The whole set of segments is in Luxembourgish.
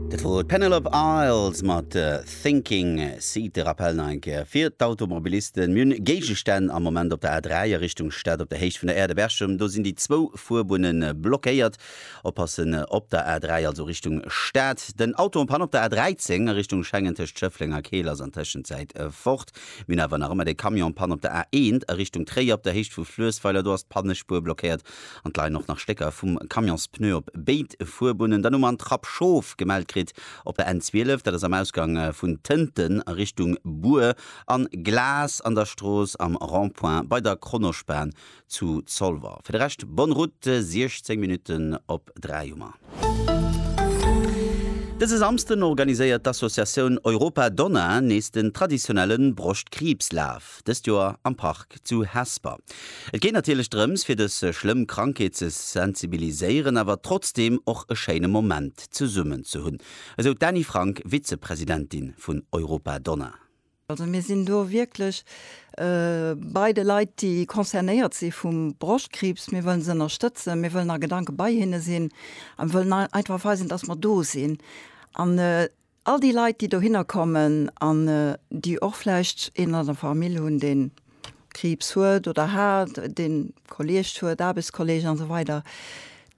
Dat wor d'Penelope Isles mat Thinking. Seet de Rappell nach eng Kéier fir d'Automobilisten, Mir hunn Géigestänn am Moment op der A3 a Richtung Stad op der Héicht vun der Aire de Berchem. Do sinn déi zwou Fuerbunne blockéiert. Oppassen op der A3, also Richtung Stad. Den Auto en panne op der A13 a Richtung Schengen tëscht Schëffleng a Keel ass an Tëschenzäit fort. Mir hunn awer nach ëmmer de Camion en panne op der A1 a Richtung Tréier op der Héicht vu Fluessweiler. Do ass d'Pannespuer blockéiert An et leien och nach Stécker vum Camionspneu op béid Fuerbunnen. Dann hu mer an Trapp Schof gemellt kritt op der N12, dat ass am Ausgang vun Tënten a Richtung Bur, a Glas an der Strooss am Rond-point bei der Kronospan zu Zolwer. Fir de Rescht bonne route, 16 Minutten op 3 hu mer. Dëse Samsden organiséiert d'Associatioun Europa Donna nees den traditionelle Broschtkriibslaf. dëst Joer am Park zu Hesper. Et geet natierlech drëms fir dës schlëmm Krankheet ze sensibiliséieren, awer trotzdeem och e schéine Moment zesummen ze hunn, esou d'Dani Frank, Vizepresidentin vun Europa Donna. Also mir sinn do wierklech bei de Leit, déi concernéiert si vum Broschtkriibs. Mir wëllen se ënnerstëtzen, mir wëllen a Gedanke bei hinne sinn a mir wëllen einfach weisen, datt mer do sinn. All déi Leit, déi dohinner kommen an déi och vläicht een an der Famill hunn, dee Kriibs huet oder hat, dee Kolleegt huet, Aarbechtskolleegen a sou weider,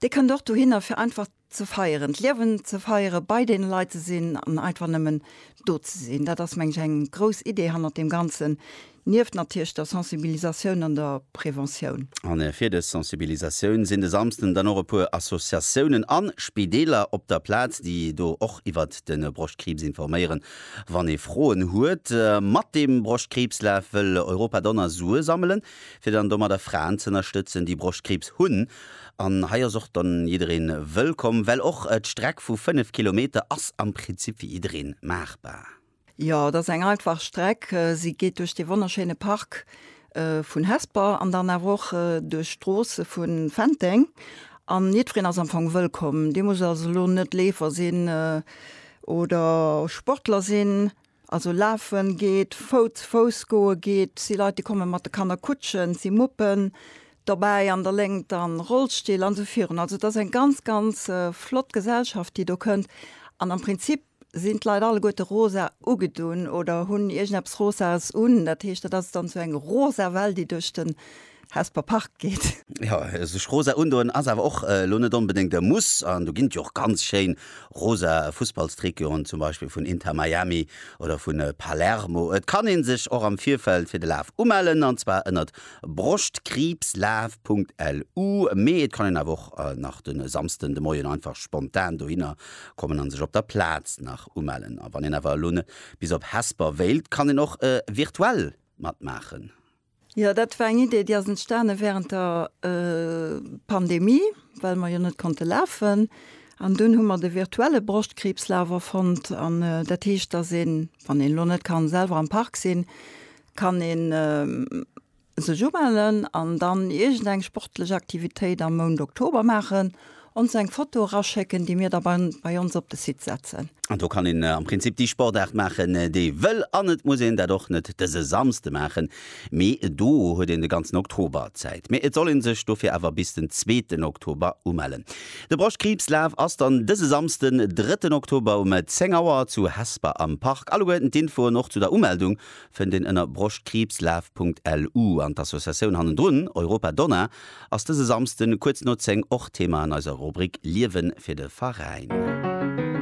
Dir kënnt och dohinner, fir einfach ze feieren, d'Liewen ze feieren, bei deene Leit ze sinn an einfach nëmmen do ze sinn. Dat ass, mengen ech, eng grouss Idee hannert deem Ganzen, Nieft natierlech der Sensibilisatioun an der Preventioun. An fir dës Sensibilisatioun sinn de Samsden dann och e puer Associatiounen an Spideeler op der Plaz, déi do och iwwert de Broschtkriibs informéieren, wann ee Froen huet. Mat dem Broschtkriibslaf wëll Europa Donner Sue sammelen, fir dann domadder Fraen ze ënnerstëtzen, déi Broschtkriibs hunn. An hei ass och dann jiddereen wëllkomm, well och d'Streck vu 5 Kilometer ass am Prinzip fir jiddereen maachbar. Jo, dat ass eng einfach Streck. Si geet duerch dee wonnerschéine Park vun Hesper an dann awer och duerch d'Stroosse vu Fenteng. An jiddwereen ass am Fong wëllkomm. Dir musst also elo net Leefer sinn oder Sportler sinn. Also lafe geet, Fouts, Fouss goe geet. Et si Leit, déi komme mat de Kannerkutschen, et si Muppen dobäi an der Léngt a Rollstill an esou virun. Also et ass eng ganz, ganz flott Gesellschaft, déi do kënnt. An am Prinzip Sinn d'Leit alleguerte rosa ugedunn oder hunn iergendeppes Rosaes un? Dat heescht, dat ass dann sou eng rosa Well, déi duerch den Hesper Park geet. Jo, sech rosa undoen ass awer och elo net onbedéngt e Muss. An do ginn et jo och ganz schéin rosa Fussballstricoten, zum Beispill vun Inter Miami oder vu Palermo. Et kann ee sech och am Virfeld fir de Laf umellen, an zwar ënnert brostkriibslaf.lu. Mee et kann een awer och nach de Samsden de Moien einfach spontan dohinner kommen an sech op der Plaz nach umellen. A wann een awer elo net bis op Hesper wéilt, kann een och virtuell matmaachen. Jo, dat war eng Idee, déi ass entstane wärend der Pandemie, well mer jo net konnte lafen. An dunn hu mer de virtuelle Broschtkriibslaf erfonnt. An dat heescht, dass een, wann een elo net ka selwer am Park sinn, kann een sech umellen an dann iergend eng sportlech Aktivitéit am Mount Oktober maachen, ons eng Foto eraschécken, déi mir da bei ons op de Site setzen. An do kann een am Prinzip déi Sportaart maachen, déi ee wëll an et muss een dat och net dëse Samsde maachen, mee do huet een de ganzen Oktober Zäit. Mee et soll ee sech dofir awer bis den zweeten Oktober umellen. De Broschtkriibslaf ass dann dëse Samsden, drëtten Oktober um 10 Auer zu Hesper am Park. Alleguerten d'Infoen och zu der Umeldung fënnt een ënner Broschtkriibslaf.lu an d'Associatioun hannendrun, Europa Donna, ass dëse Samsden kuerz no 10 och Thema an eiser Rubrik Liewen fir de Veräin.